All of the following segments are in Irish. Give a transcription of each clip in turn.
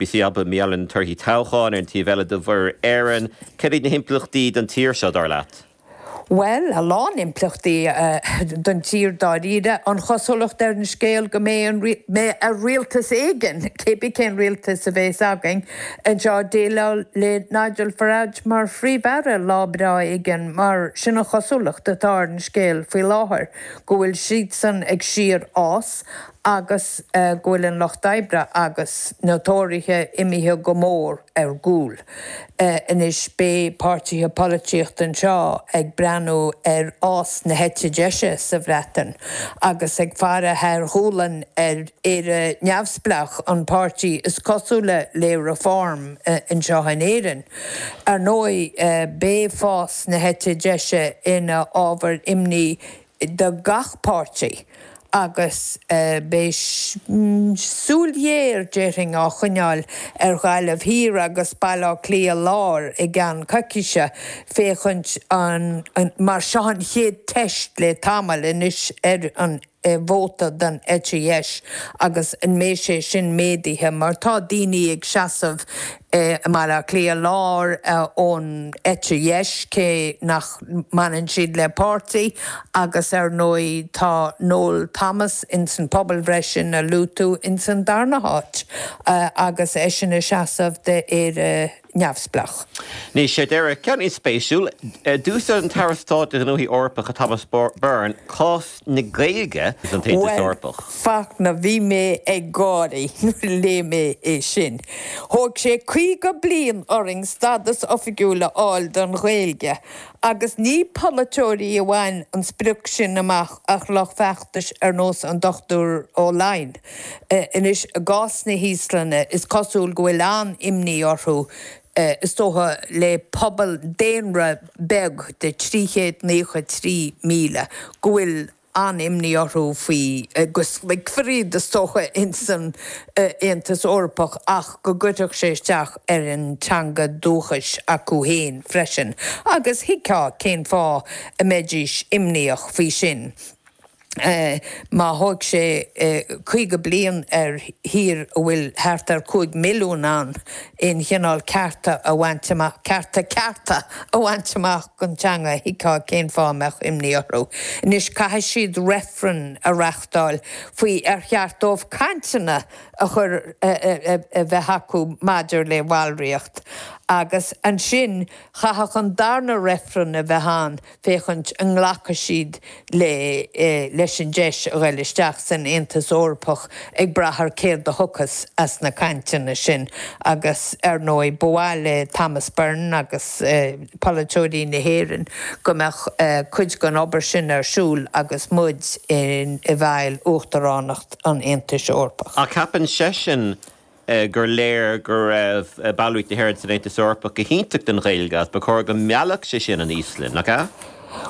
Beidh siad ag plé anois torthaí toghcháin ar an taobh eile de Mhuir Éireann. Céard iad na himpleachtaí don tír seo, dar leat? Bhuel, a lán impleachtaí don tír dáiríre. An chosúlacht ar an scéal go mbeidh ar an rialtas éigin, cé bith cén rialtas a bhéas againn anseo, déileáil le Nigel Farage mar Phríomh-Aire lá breá éigin mar sin an chosúlacht atá ar an scéal faoi láthair go bhfuil siadsan ag síorfhás agus go bhfuil an lucht oibre agus na Tóraithe imithe go mór ar gcúl anois, beidh páirtithe polaitíochta anseo ag breathnú ar fhás na heite deise sa Bhreatain agus ag faire thar a ngualainn ar Éire Neamhspleách, an páirtí is cosúla le Reform anseo in Éirinn. Ar ndóigh, beidh fás na heite deise ina ábhar imní do gach páirtí agus beidh súil ghéar, déarfainn, á choinneáil ar Ghaillimh Thiar agus Baile Átha Cliath Láir i gceann coicíse féachaint mar seo an chéad teist le tamall anois ar an vóta don eite dheis agus an mbeidh sé sin méadaithe mar tá daoine ag seasamh i mBaile Átha Cliath Láir ón eite dheis, cé nach mbaineann siad le páirtí, agus ar ndóigh tá Noel Thomas ins an phobalbhreith sin a luaigh tú ins an darna háit agus eisean ag seasamh d'Éire Neamhspleách. Anois faoi dheireadh, ceann spéisiúil. D'úsáid an tAire Stáit do Ghnóthaí Eorpacha Thomas Byrne cás. na Gaeilge san Aontas Eorpach. Bhuel, Fachtna, bhí mé ag gáirí nuair a léigh mé é sin. Thóg sé 50 bliain orainn stadas oifigiúil a fháil don Ghaeilge agus ní polaiteoirí a bhain an sprioc sin amach ach lucht feachtais ar nós an Dr Ó Laighin. Anois, i gcás na hÍoslainne, is cosúil go bhfuil an-imní orthu, is dócha, le pobal daonra beag de 393,000 go bhfuil an-imní orthu faoi, go slogfar iad, is dócha, ins an Aontas Eorpach ach go gcuirfeadh sé isteach ar an teanga dúchais acu féin freisin, agus thuigfeá cén fáth a mbeidís imníoch faoi sin. má thóig sé 50 bliain ar thír a bhfuil thart ar 5 milliún ann aon chineál cearta a bhaint amach, cearta cearta a bhaint amach don teanga, thuigfeá cén fáth a mbeadh imní orthu. Anois caithfidh siad reifreann a reachtáil faoi ar cheart dóibh cainteanna a chur a bheith acu maidir le ballraíocht agus ansin chaithfeadh an darna reifreann a bheith ann féachaint an nglacfaidh siad leis an deis a ghoil isteach san Aontas Eorpach ag brath ar céard a thiocfas as na cainteanna sin agus ar ndóigh ba mhaith le Thomas Byrne agus polaiteoirí na hÉireann go mbeadh cuid den obair sin ar siúl agus muid i bhfeighil Uachtaránacht an Aontais Eorpaigh. Ach ceapann seisean gur léir go raibh ballraíocht na hÉireann san Aontas Eorpach go hiontach don Ghaeilge agus ba chóir go meallfadh sé sin an Íoslainn, nach ea?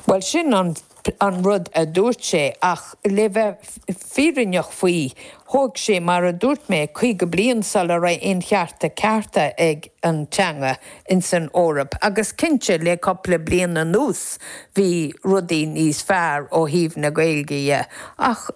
Bhuel, sin an rud a dúirt sé, ach le bheith fírinneach faoi, thóg sé, mar a dúirt mé, 50 bliain sula raibh aon chearta cearta ag an teanga in san Eoraip agus cinnte le cupla bliain anuas bhí rudaí níos fearr ó thaobh na Gaeilge dhe ach,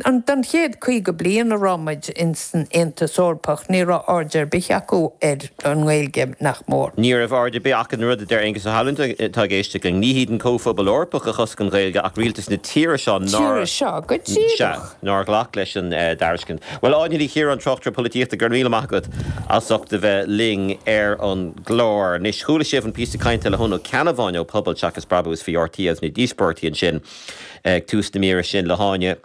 Don chéad 50 bliain a raibh muid ins an Aontas Eorpach ní raibh aird ar bith acu ar an nGaeilge, nach mór. Ní raibh aird ar bith acu ar an rud a deir Aengus Ó hAlmhain, tá ag éisteacht linn. Ní hiad an Comhphobal Eorpach a chosc an Ghaeilge ach rialtas na tíre seo nár, tíre seo, go sea, díreach. nár ghlac leis an dtairiscint. Bhuel, Áine Ní Chiaráin, tráchtaire polaitíochta, go raibh míle maith agat as ucht a bheith linn ar an gclár. Anois, chuala sibh an píosa cainte le hEoin Ó Ceannabháin ó Pobal Seachas Brabús faoi RTÉ agus na díospóireachtaí ansin. Ag tús na míre sin le hÁine,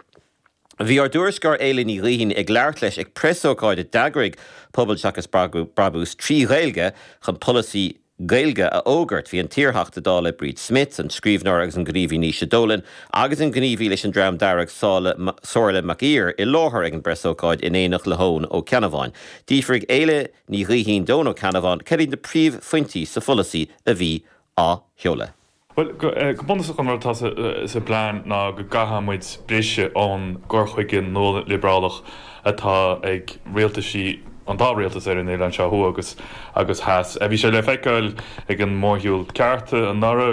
bhí ár dtuairisceoir Éilís Ní Ghaoithín ag labhairt leis ag preasócáid a d'eagraigh Pobal Seachas Brabús trí Ghaeilge chun polasaí Gaeilge a fhógairt. Bhí an t-iarTheachta Dála Bríd Smith, an scríbhneoir agus an gníomhaí Naoise Dolan agus an gníomhaí leis an Dream Dearg Somhairle McAleer i láthair ag an bpreasócáid in éineacht le hEoin Ó Ceannabháin. D'fhiafraigh Éile Ní Dhaithín d'Eoin Ó Ceannabháin cérbh iad na príomhphointí sa pholasaí a bhí á sheoladh. Bhuel, go bunúsach an rud atá sa bplean ná go gcaithfidh muid briseadh ón gcur chuige nualiobrálach atá ag rialtaisí an dá rialtas ar an oileán seo, thuaidh agus theas. Bhí sé le feiceáil ag an mórshiúl Cearta anuraidh.